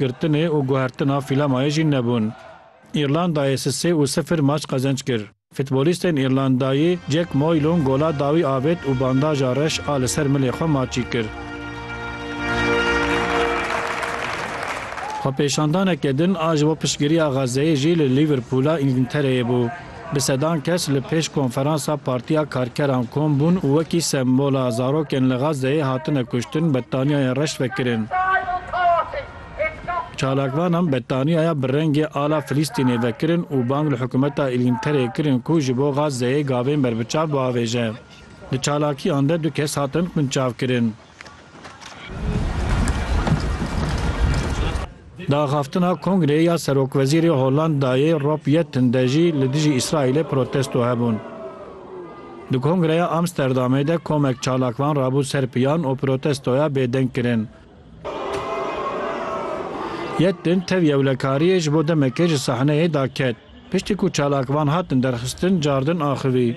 Girtinê û guhertina fîlemayê jî nebûn. Îrlandayê sisê û sifir maç qezenç kir. Fitbolîstên Îrlandayî Jack Moylon gola dawî avêt û bandaja reş a li ser milê xwe maçî kir. Xwepêşandaneke din a ji bo piştgiriya Xezzeyê jî li Lîverpûla Îngiltereyê bû. Bi sedan kes li pêş konferansa Partiya Karkeran kom bûn û wekî sembola zarokên li Gazeyê hatine kuştin bettaniyayên reş vekirin. Çalakvanan bettaniyaya bi rengê ala Filîstînê vekirin û bang li hikûmeta Îlngtereyê kirin ku ji bo Gazeyê gavên berbiçav biavêje. Di çalakiyan de du kes hatin binçavkirin. Di axaftina kongreyê ya serokwezîrê Holandayê Rob Yetten de jî li dijî Îsraîlê protesto hebûn. Di kongreya Amsterdamê de komek çalak van rabû ser piyan û protestoya bêdeng kirin. Yetten tev yewlekariyê ji bo demekê ji sahneyê daket. Piştî ku çalak van hatin derxistin cardin axivî.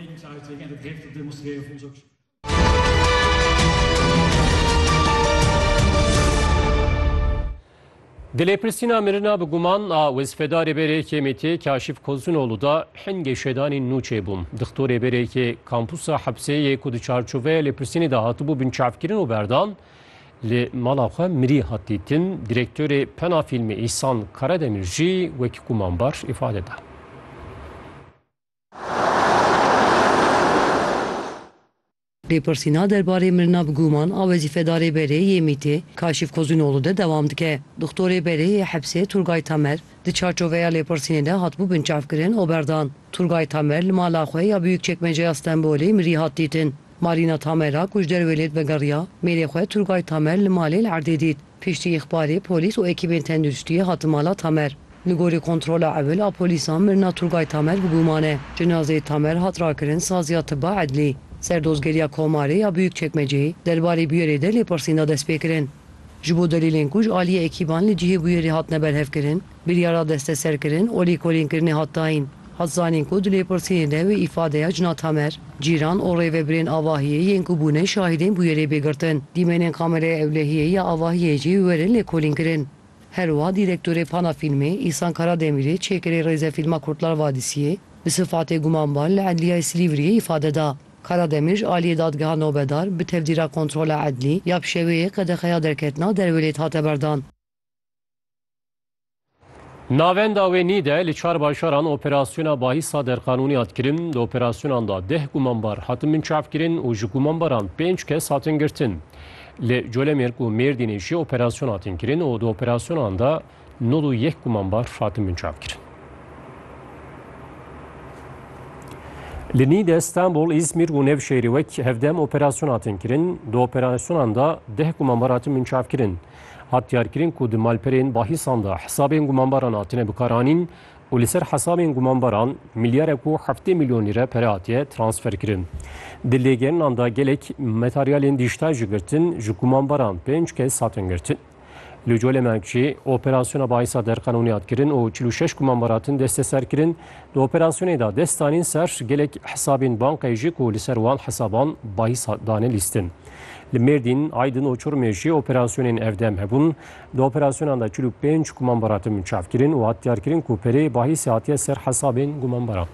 Di lêpirsîna mirina bi guman a wezîfedarê berêkê Mêtiyê Kaşîf Kozunoğlu da hin geşedanî nû çêbû. Dixtorê berêkê kampusa hepsê yê ku di çarçoveya lêpirsînê de hatibû binçavkirin û berdan li mala xwe mirî hat dîtin. Direktorê Pena Fîlmê Îhsan Karademir jî wekî gumanbar îfade da. Lêpirsîna derbarê mirina bi guman a wezîfedarê berê yê MĪT'ê Kaşif Kozûnoğlu de dewam dike. Doxtorê berê yê hepsê Turgay Tamer di çarçoveya lêpirsînê de hatibû binçavkirin û berdan. Turgay Tamer li mala xwe ya Biyûkçekmeceya Stenbolê mirî hat dîtin. Marîna Tamer a ku ji derwê lê divegerîya mêrê xwe Turgay Tamer li malê li erdê dît. Piştî îxbarê polîs û ekîbên tenduristiyê hatin mala Tamer. Li gorî kontrola ewil a polîsan mirina Turgay Tamer bi guman e. Cinazeyê Tamer hat rakirin Saziya Tibba Edlî. Serdozgeriya Komarê ya Buyukçekmeceyê derbarê bûyerê de lêpirsîn da destpêkirin. Ji bo delîlên ku ji aliyê ekîban li cihê bûyerê hatine berhevkirin, Biryara desteserkirin û lêkolînkirinê hat dayîn. Hat zanîn ku di lêpirsînê de wê îfadeya Cina Tamer, cîran û rêvebirên Avahiyê yên ku bûne şahîdên bûyerê bê girtin. Dîmenên Kameraya Ewlehiyê ya Avahiyê jî werin lêkolînkirin. Her wiha dîrektorê Pana Fîlmê Îhsan Karademirê çêkirê Rêzefîlma Kurtlar Vadisiyê bi sifatê gumanbar li Edliyayê Silîvriyê îfade da. Karademir ji aliyê Dadgeha Nobedar bi tevdîra Kontrola Edlî ya Pişeweyê qedexeya derketina derwelêt hate berdan. Navenda wê nî de li çar bajaran operasyona bahîsa derqanûnî hat kirin. Di operasyonan de deh gumanbar hatin binçavkirin û ji gumanbaran pênc kes hatin girtin. Li Colemêrg û Mêrdînê jî operasyon hatin kirin û di operasyonan de nod û yek gumanbar hatin binçavkirin. Li nî de Stenbol, Îzmîr û Nevşehîrê wek hevdem operasyon hatin kirin. Di operasyonan de deh gumanbar hatin binçavkirin. Hat diyarkirin ku di malperên bahîsan de hesabên gumanbaran hatine bikaranîn û li ser hesabên gumanbaran milyarek û heftê milyon lîre pere hatiye transferkirin. Di lêgerinan de gelek materyalên dîjtal jî girtin ji gumanbaran pênc kes hatin girtin. Li Colê Mekçî operasyona bahîsa derqanûnî hat kirin û çil û şeş gumanbar hatin desteserkirin. Di operasyonê de dest danîn ser gelek hesabên bankayê jî ku li ser wan hesaban bahîs hat dane lîstin. Li Mêrdîn, Aydin û Çorumê jî operasyonên evdem hebûn. Di operasyonan de çil û pênc gumanbar hatin çavkirin û hat diyarkirin ku perê bahîsê hatiye ser hesabên gumanbaran.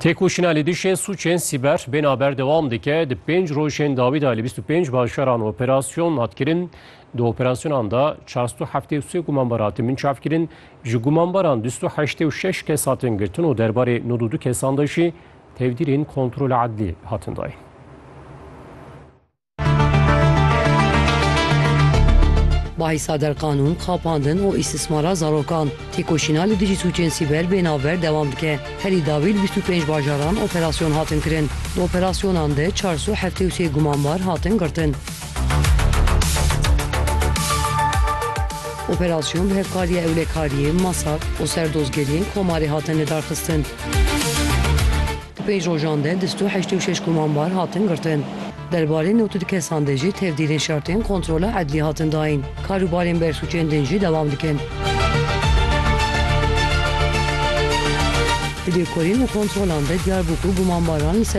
Têkoşîna li dijî sûcên sîber bêna berdewam dike di pênc rojên dawî de li bîst û pênc bajaran operasyon hat kirin. Di operasyonan de çar sed û heftê û sê gumanbar hatin binçav kirin. Ji gumanbaran du sed û heştê û şeş kes hatin girtin û derbarê nod û du kesan de jî tevdîrên kontrola edlî hatin dayîn. Bahisa derqanûn, xapandin û îstismara zarokan, têkoşîna li dijî sûcên sîber bê navber dewam dike. Herî dawî li bîst û pênc bajaran operasyon hatin kirin. Di operasyonan de çar sed û heftê û sê gumanbar hatin girtin. Operasyon bi hevkariya ewlekariyê, MASAK û serdozgeriyên Komarê hatin lidarxistin. Di pênc rojan de du sed û heştê û şeş komambar hatin girtin. Derbarê newt û du kesan de jî tevdîrên şertên kontrola edlî hatin dayîn. Karûbarên bersûcên din jî dewam dikin. Di lêkolîn û kontrolan de diyar bû ku gumambaran li ser